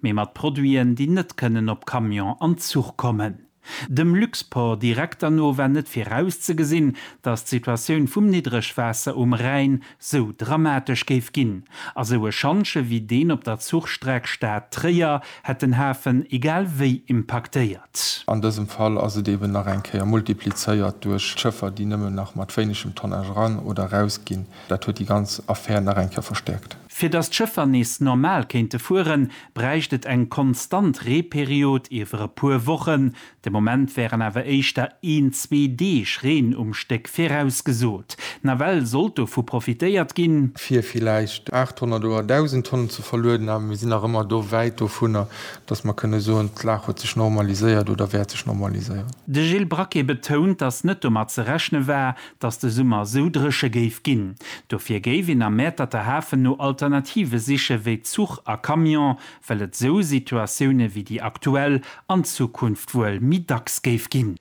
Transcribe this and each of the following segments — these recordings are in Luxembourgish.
mee mat Produiten, déi net kënnen op Camion an Zuch kommen. Dem Luxport Direkter no war net virauszegesinn, datt d'Situatioun vum Niddregwaasser um Rhäin sou dramatesch géif ginn. A sou e Schantje wéi deen op der Zuchstreck Stad-Tréier hätt den Hafen egal wéi impaktéiert. An dësem Fall ass et eben nach eng Kéier multiplizéiert duerch d'Schëffer, déi nëmmen nach mat wéinegem Tonnage eran oder eraus ginn. Dat huet déi ganz Affär nach eng Kéier verstäerkt. Fir datt d'Schëffer nees normal kéinte fueren, bräicht et eng konstant Reeperiod iwwer e puer Wochen. De Moment wären awer éischter een, zwee Deeg Reen um Stéck virausgesot. Nawell sollt dovu profitéiert ginn. fir villäicht 800 oder 1.000 Tonnen ze verlueden, awer mir sinn nach ëmmer do wäit dovunner, datt mer kënne soen, d'Lag huet sech normaliséiert oder wäert sech normaliséieren. De Gilles Braquet betount, datt net domat ze rechne war, dass de Summer sou dréche géif ginn. Dofir géif een am Mäerterter Hafen no Alternative siche wéi Zuch a Camion, well et sou Situatioune wéi déi aktuell an Zukunft wuel méi dacks géif ginn.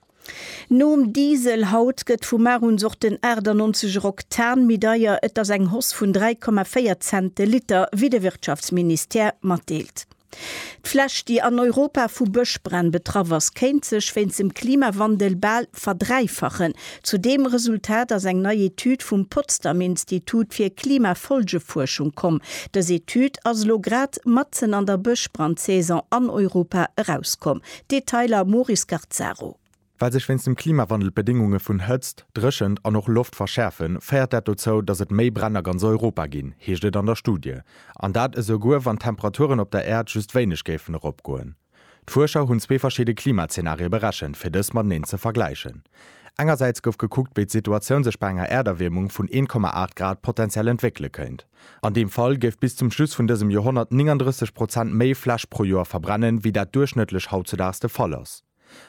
Nom Diesel haut gëtt vu mar un och den 98 er Oktan méi deier. Et ass eng Hausse vun 3,4 Cent de Liter, wéi de Wirtschaftsministère matdeelt. D'Fläch, déi an Europa vu Bëschbränn betraff ass, kéint sech wéinst dem Klimawandel bal verdräifachen. Zu deem Resultat ass eng nei Etüd vum Potsdam Institut fir Klimafolgefuerschung komm. Dës Etüd ass elo grad matzen an der Bëschbrandsaison an Europa erauskomm. Detailer Mori Scarzzaro. Well sech wéinst dem Klimawandel d'Bedéngunge vun Hëtzt, Dréchent an och Loft verschäerfen, féiert dat dozou, datt et méi Bränn a ganz Europa ginn, heescht et an der Studie. An dat esouguer, wann d'Temperaturen op der Äerd just wéineg géifen eropgoen. D'Fuerscher hunn zwee verschidde Klimazenarie berechent, fir dës mateneen ze vergläichen. Engersäits gouf gekuckt, wéi d'Situatioun sech bei enger Äerderwiermung vun 1,8 Grad potenziell entwéckele kéint. An deem Fall géif bis zum Schluss vun dësem Joerhonnert 39 Prozent méi Fläch pro Joer verbrennen, wéi dat duerchschnëttlech hautzudaags de Fall ass.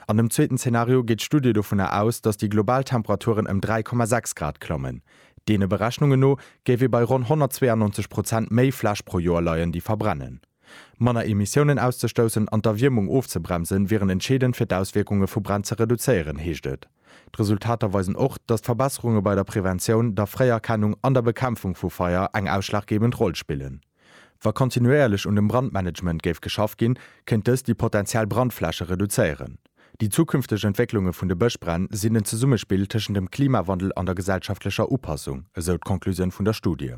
An dem zweeten Zenario geet d'Studie dovunner aus, datt déi global Temperaturen ëm 3,6 Grad klammen. Deene Berechnunge no géif ee bei ronn 192 Prozent méi Fläch pro Joer leien, déi verbrennen. Manner Emissiounen auszestoussen an d'Erwiermung ofzebremsen, wieren entscheedend fir d'Auswierkunge vu Bränn ze reduzéieren, heescht et. D'Resultater weisen och, datt Verbesserunge bei der Preventioun, der Fréierkennung an der Bekämpfung vu Feier eng ausschlaggebend Roll spillen. Wa kontinuéierlech un dem Brandmanagement géif geschaff ginn, kéint dëst déi potentiell Brandfläche reduzéieren. Déi zukünfteg Entwécklunge vun de Bëschbränn sinn en Zesummespill tëschent dem Klimawandel an der gesellschaftlecher Upassung, esou d'Conclusioun vun der Studie.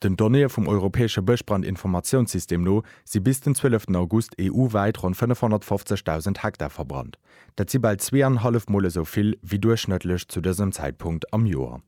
Den Donnéeë vum europäesche Bëschbrandinformatiounssystem no si bis den 12 August EU-wäit ronn 550.000 Hektar verbrannt. Dat si bal zwee an e hallef Mol esou vill wéi duerchschnëttlech zu dësem Zäitpunkt am Joer.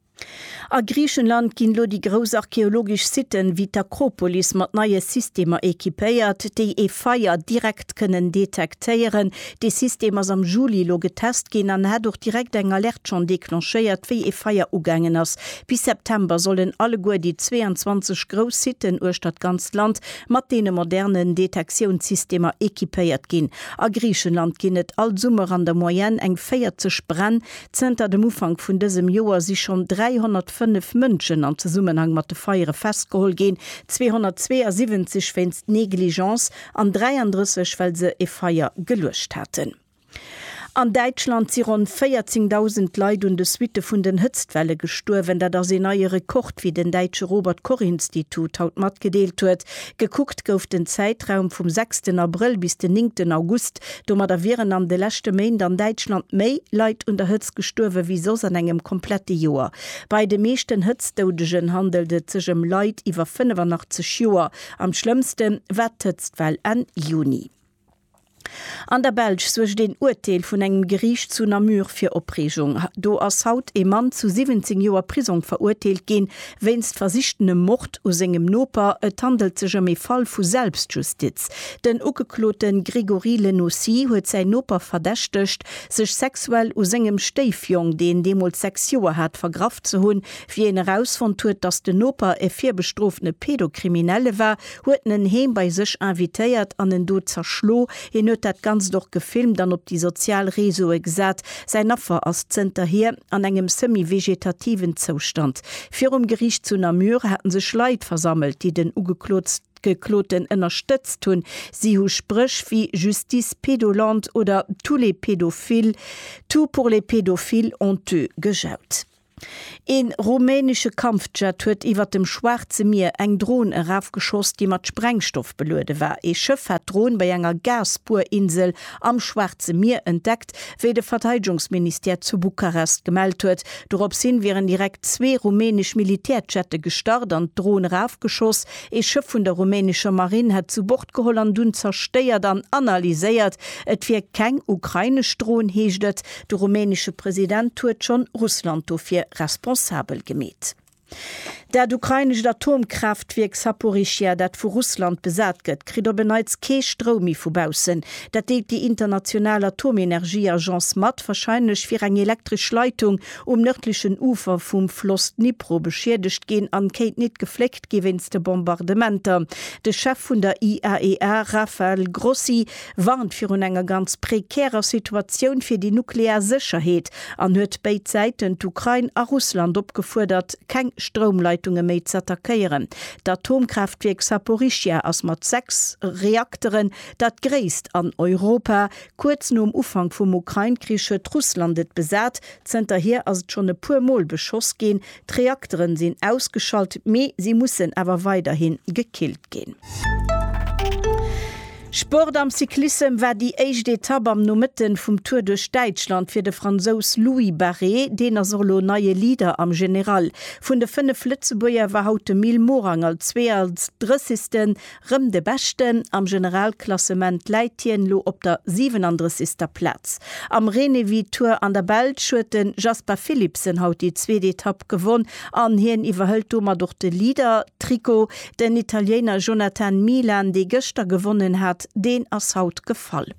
A Griichenland ginn elo déi grouss archeologesch Siten, ewéi d'Akropolis, mat neie Systemer equipéiert, déi ee Feier direkt kënnen detektéieren. Dee System ass am Juli elo getest ginn an hat och direkt eng Alerte schonn declenchéiert, wéi ee Feier ugaangen ass. Bis September sollen alleguer déi 22 grouss Siten uechter d'ganzt Land mat deene modernen Detektiounssystemer equipéiert ginn. A Griichenland ginn et all Summer an der Moyenne eng 40 Bränn, Zënter dem Ufank vun dësem Joer si schonn 305 Mënschen am Zesummenhang mat de Feiere festgeholl ginn, 272 wéinst Negligence an 33, well se e Feier geluecht haten. An Däitschland si ronn 14.000 Leit un de Suitte vun den Hëtztwelle gestuerwen. Dat ass een neie Rekord, wéi den däitsche Robert-Koch-Institut haut matgedeelt huet. Gekuckt gouf den Zäitraum vum sechsten Abrëll bis den néngten August, Domadder wieren an de leschte Méint an Däitschland méi Leit un der Hëtzt gestuerwe wéi soss an engem komplette Joer. Bei de meeschten Hëtztdoudegen handelt et sech ëm Leit iwwer 85 Joer. Am schlëmmste war d'Hëtztwell Enn Juni. An der Belsch suergt een Urteel vun engem Geriicht zu Namur fir Opreegung. Do ass haut ee Mann zu 17 Joer Prisong verurteelt ginn, Wéinst versichtenem Mord u sengem Noper, et handelt sech ëm ee Fall vu Selbstjustiz. Den Ugeklote Grégory Lenaussy huet säin Noper verdächtegt, sech sexuell u sengem Stéifjong, deen deemools sechs Joer hat, vergraff ze hunn. Wéi een erausfonnt huet, datt den Noper e virbestroofene Pedocriminelle war, huet en heem bei sech invitéiert an en do zerschlo. Hien huet dat Ganzt och gefilmt an op déi sozial Reseaue gesat. Säin Affer ass zënterhier an engem semi-vegetativen Zoustand. Virum Geriicht zu Namur haten sech Leit versammelt, déi den Ugekloten ënnerstëtzt hunn. Si hu Spréch wéi Justice pédolante oder Tous les pédophiles, tout pour les pédophiles honteux gejaut. Een rumänesche Kampfjet huet iwwert dem Schwaarze Mier eng Dron erafgeschoss, déi mat Sprengstoff beluede war. Ee Schëff hat d'Dron bei enger Gasbuerinsel am Schwaarze Mier entdeckt, wéi de Verteidegungsministère zu Bukarest gemellt huet. Dorops hin wieren direkt zwee rumänesch Militärjette gestart an d'Dron erafgeschoss. Ee Schëff vun der rumänescher Marinn hätt zu Bord geholl an dunn zerstéiert an analyséiert. Et wier keng ukrainesch Dron, heescht et. De rumänesche President huet schonn Russland dofir responsabel gemeet. Dat ukrainescht Atomkraaftwierk Saporischschja, dat vu Russland besat gëtt, kritt op en Neits kee Stroum méi vu baussen. Dat deelt déi international Atomenergieagence mat. Warscheinlech wier eng elektresch Leitung um nërdlechen Ufer vum Floss Dnipro beschiedegt ginn an kéint nit gefléckt gi wéinst de Bombardementer. De Chef vun der IAEA Rafael Grossi warnt virun enger ganz prekärer Situatioun fir déi nuklear Sécherheet an huet béid Säiten, d'Ukrain a Russland, opgefuerdert, keng Stroumleitunge méi z'attackéieren. D'Atomkraaftwierk Saporischschja ass mat sechs Reakteren dat gréisst an Europa. Kuerz nom Ufank vum Ukrain-Krich huet Russland et besat. Zënterhier ass et schonn e puer Mol beschoss ginn. D'Reakteren sinn ausgeschalt, mee si mussen awer weiderhin gekillt ginn. Sport Am Cyclissem war déi éischt Etapp am Nomëtten vum Tour duerch Däitschland fir de Fransous Louis Barré. Deen ass och elo neie Leader am General. Vun de 5 Lëtzebuerger war haut de Mil Morang als 32. Rëm de Beschten am Generalklassement läit hien elo op der 37. Plaz. Am Renewi Tour an der Belsch huet de Jasper Philipsen haut déi zweet Etapp gewonn an hien iwwerhëlt domat och de Leader-Trikot. Den Italiener Jonathan Milan, dee gëschter gewonnen hat, deen ass haut gefall.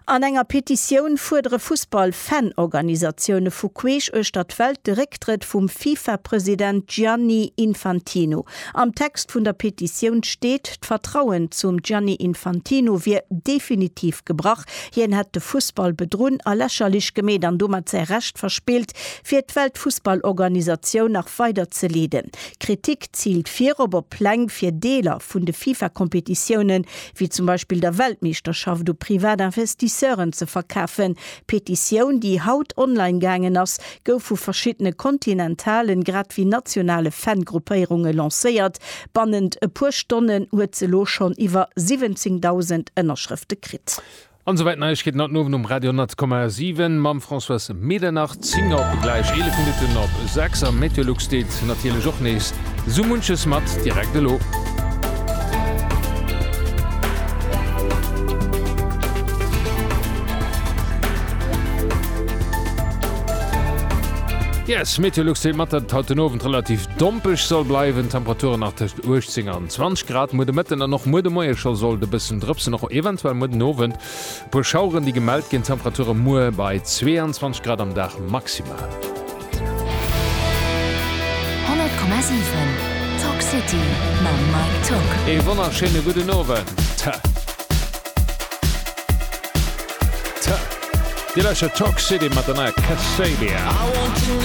An enger Petitioun fuerdere Fussball-Fan-Organisatioune vu queesch uechter d'Welt de Récktrëtt vum FIFA-President Gianni Infantino. Am Text vun der Petitioun steet, d'Vertrauen zum Gianni Infantino wier definitiv gebrach, hien hätt de Fussball bedrunn a lächerlech gemeet an domat säi Recht verspillt, fir d'Weltfussballorganisatioun nach weider ze leeden. D'Kritik ziilt virop op Pläng, fir Deeler vun de FIFA-Kompetitioune wéi zum Beispill der Weltmeeschterschaft u privat Investisseuren ze verkafen. D'Petitioun, déi haut online gaangen ass, gouf vu verschiddene kontinentalen grad wéi nationale Fan-Gruppéierunge lancéiert. Bannent e puer Stonnen huet se elo schonn iwwer 17.000 Ënnerschrëfte kritt. An souwäit Neiegkeeten haut den Owend um Radio 10,7 mam Françoise Medernach. 10 op gläich 11 Minutten op 6 a Meteolux deet natierlech och nees sou munches mat. Direkt elo. Yes, Meteolux deet mat, datt et haut den Owend relativ dompeg soll bleiwen, Temperaturen nach tëscht 18 an. 20 Grad muer de Mëtten an och muer de Moie scho sollt e bëssen drëpsen, och eventuell muer den Owend e puer Schaueren, déi gemellt ginn. D'Temperature muer bei 22 Grad am Dag maximal. 100,7 Talk City mam Mike Tock. Ee wonnerschéine gudden Owend. Dir lauschtert Talk City mat der neier Kasabian.